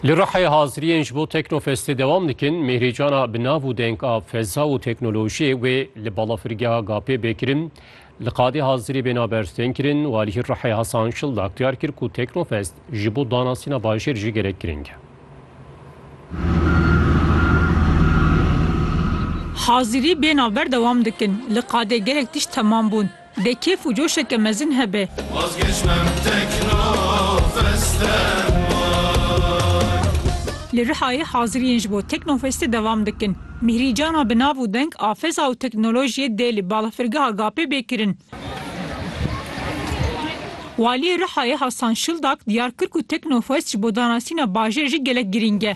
Li Rihê haziriyên ji bo Teknofestê dewam dikin, Mêhrîcana bi nav û deng a Feza û Teknolojiyê wê li balafirgeha Gapê bê kirin. Li Qadê hazirî bê naber tên kirin, Walî Rihê Hasan Şildak diyar kir ku Teknofest ji bo danasîna bajêr jî gelek girîng e. Hazirî bê naber dewam dikin, li Qadê gelek tişt temam bûn. Dê kêf û coşeke mezin hebe. Li Rihayê haziriyên ji bo Teknofestê devam dikin. Mîhrî Cana bi nav û deng a Feza û Teknolojiyê dê li Balafirgeha Gapê bê kirin. Waliyê Rihayê Hasan Şildak diyar kir ku Teknofest ji bo danasîna bajêr jî gelek girîng e.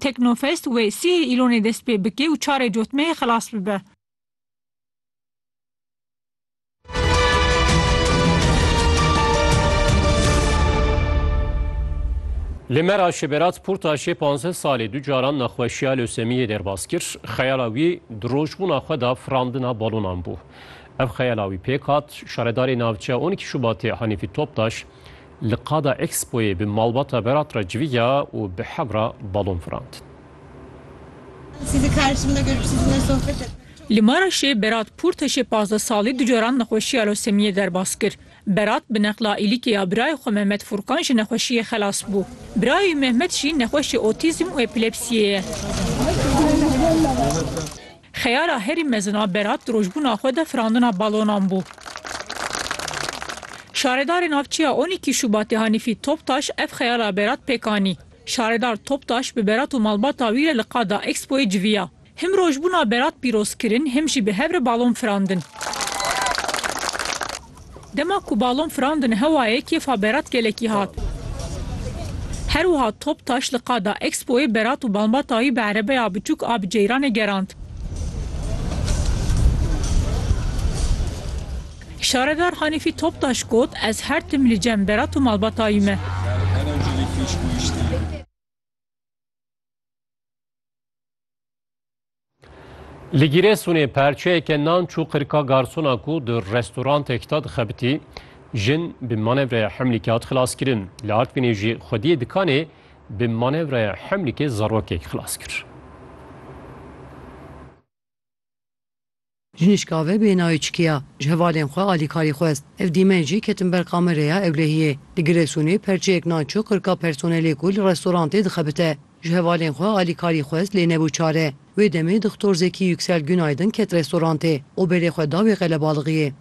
Teknofest wê sihê Îlonê dest pê bike û çarê cotmeyê xilas bibe. Li Meraşê Berat Portaşê panzdeh salê du caran nexweşiya lösemiyê derbas kir. Xeyala wî di rojbûna xwe de firandina balonan bû. Ev xeyala wî pêk hat, şaredarê navçeya on î Şubatê Hanîfî Toptaş Li qada Expoyê bi malbata Berat re civiya û bi hev re balon firand. Li Maraşê Berat Pûrteşê pazdeh salî du caran nexweşiya losemiyê derbas kir. Berat bi neqla îlîkê ya birayê xwe Mehmet Furkan ji nexweşiyê xelas bû. Birayê wî Mehmet jî nexweşê otîzm û epilepsiyê ye. Xeyala herî mezin a Berat di rojbûna xwe de firandina balonan bû. Şaredarê navçeya on îkî Şubatê Hanîfî Toptaş ev xeyala Berat pêk anî. Şaredar Toptaş bi Berat û malbata wî re li qada Expoyê civiya. Him rojbûna Berat pîrozkirin him jî bi hev re balon firandin. Dema ku balon firandin hewayê kêfa Berat gelekî hat. Her wiha Toptaş li qada Expoyê Berat û Balmba Tahî bi erebeya biçûk a bi ceyranê gerand. Şaredar Hanîfî Toptaş got, Ez her tim li cem Berat û Malba Tahî me. Li Gîresunê perçeyeke nan çû qirka garsona ku di restorantek de dixebitî, jin bi manevreya hemlîkê hat xilaskirin. Li Artvinê jî xwediyê dikanê bi manevreya hemlîkê zarokek xilas kir. Jinîşka ve bê nayê çikî ya, ji hevalên xwe alîkarî xwest. Ev dîmen jî ketin ber kamereya ewlehiyê. Li Giresunê perçeyek nan çû qirka personelê ku li restorantê dixebite. Ji hevalên xwe alîkarî xwest lê nebû çare. Wê demê Dixtor Zekî Yüksel Günaydın ket restorantê û berê xwe da wê qelebalixiyê.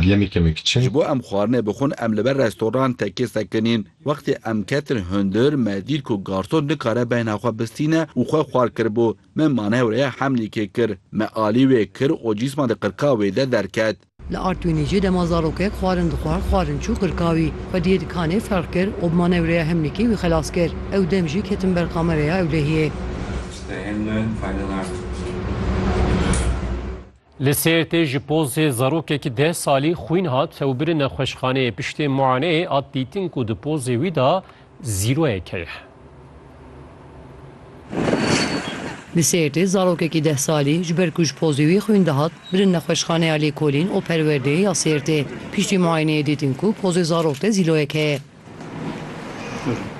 Ji bo em xwarinê bixwin em li ber restorantekê sekinîn. Wextê em ketin hundir me dît ku garson nikare beyna xwe bistîne û xwe xwar kiribû. Min manewreya Hemlîkê kir. Me alî wê kir û cîsma di qirka wê de derket. Li Artwînê jî dema zarokek xwarin dixwar xwarin çû qirka wî. Xwediyê dikanê ferq kir û bi manewreya Hemlîkê wî xelas kir. Ew dem jî ketin ber kamereya ewlehiyê. Li Sêrtê ji pozê zarokekî deh salî xwîn hat tewbirî nexweşxaneyê. Piştî muayeneyê hat dîtin ku di pozê wî de zîroyek heye. Li Sêrtê zarokekî deh salî ji ber ku ji pozê wî xwîn dihat, birin nexweşxaneya Lêkolîn û Perwerdeyê ya Sêrtê. Piştî muayeneyê dîtin ku pozê zarok de zîloyek heye.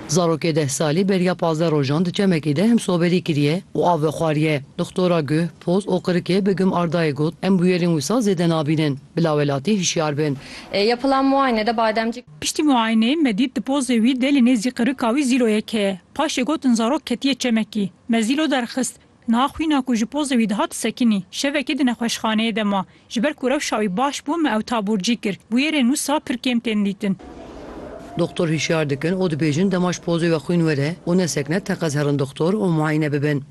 Zarokê deh salî beriya pazdeh rojan di çemekê de himsoberî kiriye û av vexwariye. Doxtora guh, poz û qirikê Begum Ardayê got, Em bûyerên wisa zêde nabînin. Bi lawelatî hişyar bin. Yapılan muayenede bademcik. Piştî muayeneyê me dît di pozê wî de li nêzî qirika wî zîloyek heye. Paşê gotin zarok ketiye çemekî. Me zîlo derxist. Niha xwîna ku ji pozê wî dihat sekinî. Şevekê di nexweşxaneyê de ma. Ji ber ku rewşa wî baş bû me ew taborcî kir. Bûyerên wisa pir kêm tên dîtin. Doxtor hişyar dikin û dibêjin dema ji pozê we xwîn were û nesekine teqez herin doxtor û muayine bibin.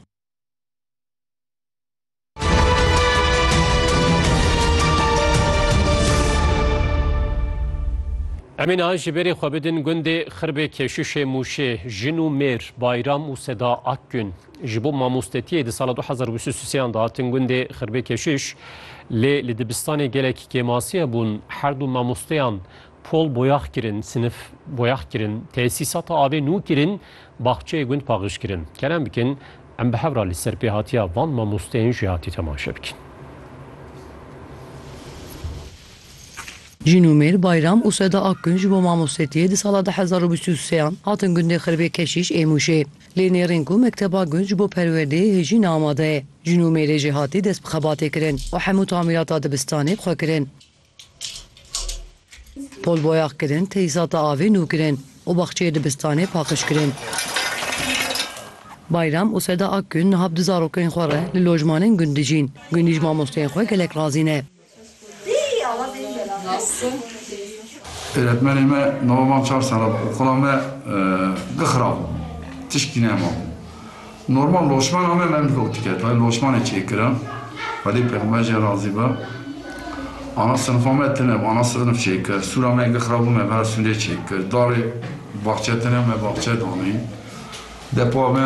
Em ê niha ji berê xwe bidin gundê Xirbê Keşuşê Mûşê, jin û mêr, Bayram û Seda Akgün. Ji bo mamostetiyê di sala du hezar û bîst û sê an dihatin gundê Xirbê Keşiş lê li dibistanê gelek kêmasiye bûn. Her du mamosteyan pol boyax kirin, sinif boyax kirin, tesîsata avê nû kirin, baxçeyê gund paxij kirin. Kerem bikin em bi hev re li ser pêhatiya van mamosteyên jî hatî temaşe bikin. Jîn û mêr, Bayram û Seda Akgün ji bo mamostetiyê di sala du hezar û bîst û sê an hatin gundê Xirbê Keşiş ê Mûşê. Lê nêrîn ku Mekteba Gund ji bo Perwerdeyê hêjîn amade ye. Jin û mêrê jî hatî dest bi xebatê kirin û hemû tamîrata dibistanê xwe kirin. Pol boyax kirin, teyîsata avê nû kirin û baxçeyê dibistanê paqij kirin. Bayram û Seda Akgün niha bi du zarokên xwe re li lojmanên gund dijîn. Gundî ji mamosteyên xwe gelek razî ne. Öğretmenê me nava mam çar sala bi oxula me bi xirab bû. Tişkî nema bû. Normal loşmana me me mirov dike tayê loşmanê çêkirin. Xwedê pêxember jê razî be. Ana sinifa me tune bi ana sinif çêkir. Sûra me gi xirab bû me vera sûrê çêkir. Darê baxçe tune me baxçe danî. Depa me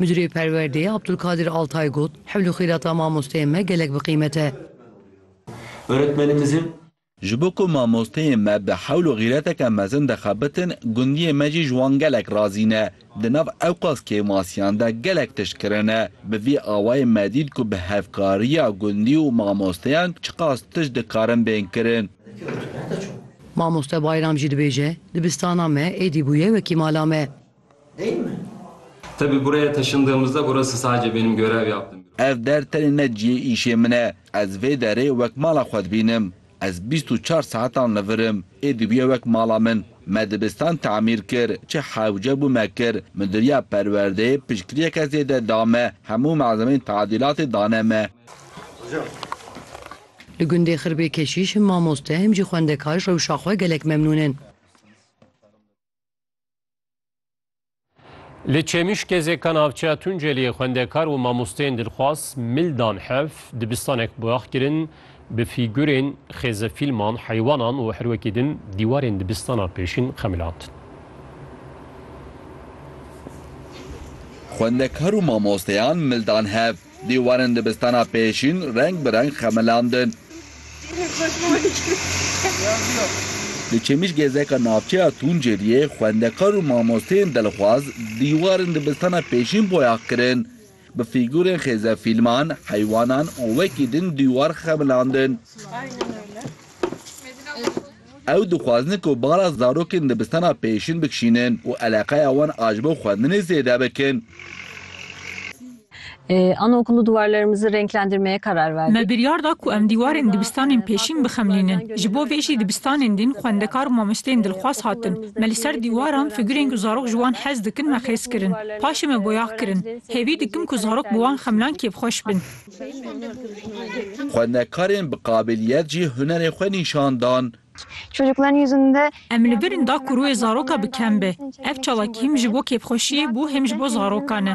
Midirê Perwerdeyê Abdulkadir Altay got, Hewl û xîrata mamosteyên me gelek bi qîmet e. Öğretmenimizin. Ji bo ku mamosteyên me bi hewl û xîreteke mezin dixebitin, gundiyê me jî ji wan gelek razî ne. Di nav ewqas kêmasiyan de gelek tişt kirine. Bi vî awayê me dît ku bi hevkariya gundî û mamosteyan çiqas tişt dikarin bên kirin. Mamoste Bayram jî dibêje, Dibistana me êdî bûye wekî mala me. Değil mi? Tabii buraya taşındığımızda burası sadece benim görev yaptığım bir Ev der tenê ne ciyê îşê min e. Ez vê derê wek mala xwe dibînim. Ez bîst û çar saetan li vir im. Ê dibûye wek mala min. Me dibistan temîr kir. Çi hewce bû me kir. Midiriya Perwerdeyê piştgiriyeke zêde da me. Hemû malzemeyên tadilatê dane me. Li gundê Xirbê Keşîş him mamoste him jî xwendekar rewşa xwe gelek memnûn in. Li Çêmişkê zê ka navçeya Tunceliyê xwendekar û mamosteyên dilxwaz mil dan hev, dibistanek boyax kirin, bi fîgurên xêze fîlman, heywanan û her wekî din dîwarên dibistana pêşîn xemilandin. Xwendekar û mamosteyan mil dan hev, Dîwarên dibistana pêşîn reng bi reng xemilandin. Di Çêmişgezeka navçeya Tuncêliyê xwendekar û mamosteyên dilxwaz dîwarên dibistana pêşîn boyax kirin. Bi fîgûrên xêze fîlman, heywanan û wekî din dîwar xemilandin. Ew dixwazin ku bala zarokên dibistana pêşîn bikişînin û eleqeya wan a ji bo xwendinê zêde bikin. Anaokullu duvarlarımızı renklendirmeye karar verdik. Me biryar da ku em dîwarên dibistanên pêşîn bixemlînin. Ji bo vê jî dibistanên din xwendekar û mamosteyên dilxwaz hatin. Me li ser dîwaran figurên ku zarok ji wan hez dikin me xêz kirin. Paşê me boyax kirin. Hêvî dikim ku zarok bi wan xemlan kêfxweş bin. Xwenekarên bi qabîliyet jî hunerê xwe nîşan dan. Em li birîn da ku rûyê zaroka bi kem be. Ev çalakî him ji bo kêfxweşiyê bû him ji bo zarokan e.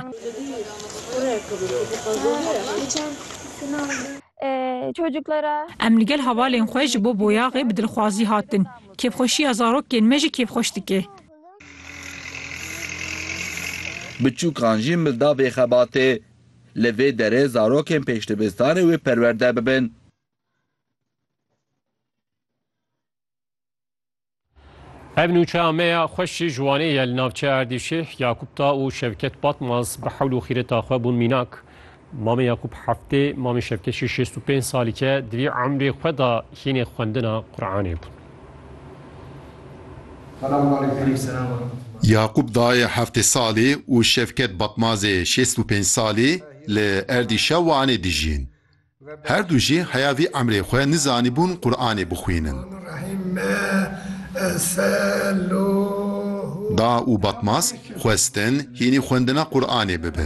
Em li gel hevalên xwe ji bo boyaxê bi dilxwazî hatin. Kêfxweşiya zarokên me jî kêfxweş dike. Biçûkan jî milda vê xebatê Li vê derê zarokên pêşdibistanê wê perwerde bibin. Ev nûçeya me ya xweş jî ji Wanê ye li navçeya Erdîşê. Yakûp Ta û Şevket Batmaz bi hewl û xîreta xwe bûn mînak. Mamê Yakûp heftê, mamê Şevket jî şêst û pênc salî ke di vî emrê xwe de hînê xwendina Quranê bûn. Yakup dayê heftê salî û Şevket Batmazê şêst û pênc salî li Erdîşa Wanê dijîn. Her du jî heya vî emrê xwe nizanîbûn Quranê bixwînin. Da û Batmaz xwestin hînî xwendina Quranê bibin.